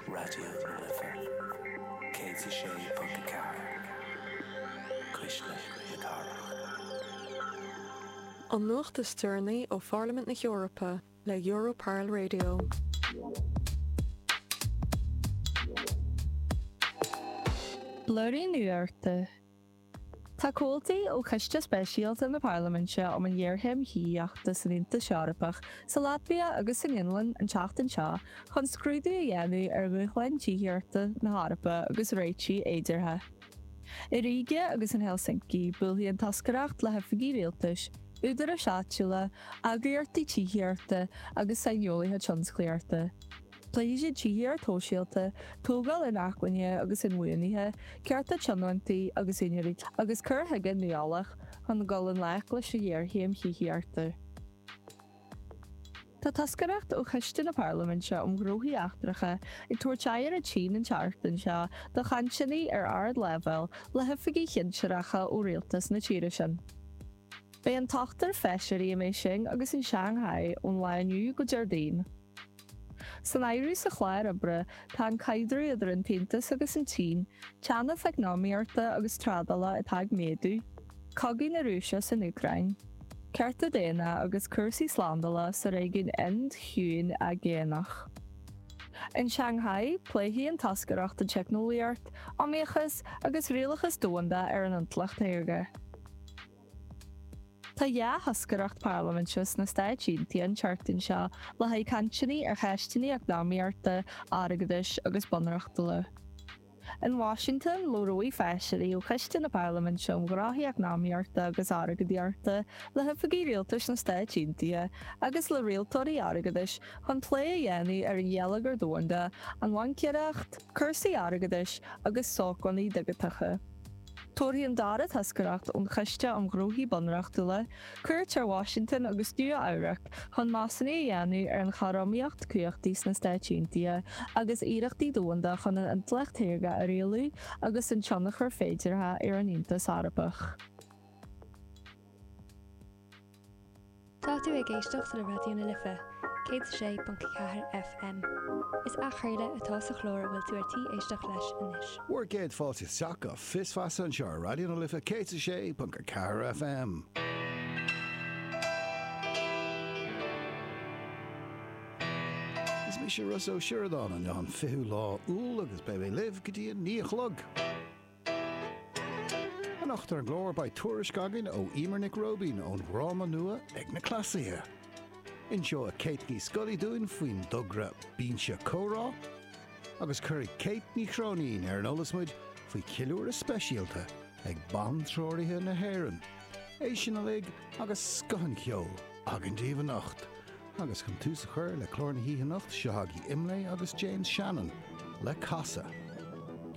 Raidió na Life 106.4 Cuisle na Cathrach. An nuacht is deireanaí ó Pharlaimint na hEorpa le Europarl Radio. Blúiríní Nuachta. Tá comhaltaí ó Choiste Speisialta na Parlaiminte um an Ghéarchéim Thithíochta san Aontas Eorpach, sa Laitvia agus san Fhionlainn an tseachtain seo chun scrúdú a dhéanamh ar dhúshláin tithíochta na hEorpa agus réitigh fhéideartha. I Ríge agus in Helsinki buailfidh an toscaireacht le hoifigigh rialtais, údaráis áitiúla, eagraíochtaí tithíochta agus saineolaithe tionsclaíochta. Pléifidh siad tithíocht shóisialta, tógáil inacmhainne agus inbhuanaithe, cearta tionóntaí agus úinéirí, agus cur chuige nuálach chun dul i ngleic leis an ngéarchéim thithíochta. Tá toscaireacht ó Choiste na Parlaiminte um Ghnóthaí Eachtracha ag tabhairt aghaidh ar an tSín an tseachtain seo do chainteanna ar ardleibhéal le hoifigigh shinsearacha ó rialtas na tíre sin. Beidh an t-ochtar feisirí i mBéising agus in Shanghai ón lá inniu go Déardaoin. San áireamh sa chlár oibre tá an caidreamh idir an tAontas agus an tSín, teannas eacnamaíochta agus trádála atá ag méadú, cogadh na Rúise san Úcráin, cearta daonna agus cúrsaí slándála sa réigiún Ind-Chiúin-Aigéanach. In Shanghai, pléifidh an toscaireacht an teicneolaíocht, iomaíochas agus rialachas domhanda ar an intleacht shaorga. Tá dhá thoscaireacht parlaiminte sna Stáit Aontaithe an tseachtain seo le haghaidh cainteanna ar cheisteanna eacnamaíochta, airgeadais agus bunreachtúla. In Washington, labhróidh feisirí ó Choiste na Parlaiminte um Ghnóthaí Eacnamaíochta agus Airgeadaíochta le hoifigigh rialtais na Stáit Aontaithe agus le rialtóirí airgeadais chun plé a dhéanamh ar an gheilleagar domhanda, an bhaincéireacht, cúrsaí airgeadais agus sócmhainní digiteacha. Tabharfaidh an dara toscaireacht ón Choiste um Ghnóthaí Bunreachtúla cuairt ar Washington agus Nua Eabhrac chun measúnú a dhéanamh ar an chothromaíocht cumhachtaí sna Stáit Aontaithe agus iarrachtaí domhanda chun an intleacht shaorga a rialú agus an tionchar féideartha ar an Aontas Eorpach. Tá tú ag éisteacht le Raidió na Life, 106.4 FM. Is athchraoladh atá sa chlár a bhfuil tú ar tí éisteacht leis anois. Bhur gcéad fáilte isteach go Fios Feasa anseo ar Raidió na Life 106.4 FM. Is mise Rossa Ó Sioradáin inniu an fichiú lá Iúil agus beidh mé libh go dtí a naoi a chlog. Anocht ar Glór beidh tuairisc againn ó Eimear Nic Róibín ón dhráma nua ag na Cleasaithe. Inseoidh Kate Ní Scolaí dúinn faoin dtogra Binse Comhrá agus cuirfidh Kate Ní Chróinín ar an eolas muid faoi cheiliúradh speisialta ag bantreoraithe na hÉireann. É sin uilig agus scoth an cheoil againn daoibh anocht. Agus chun tús a chur le clár na hoíche anocht, seo chugaibh Imlé agus James Shannon le Casadh.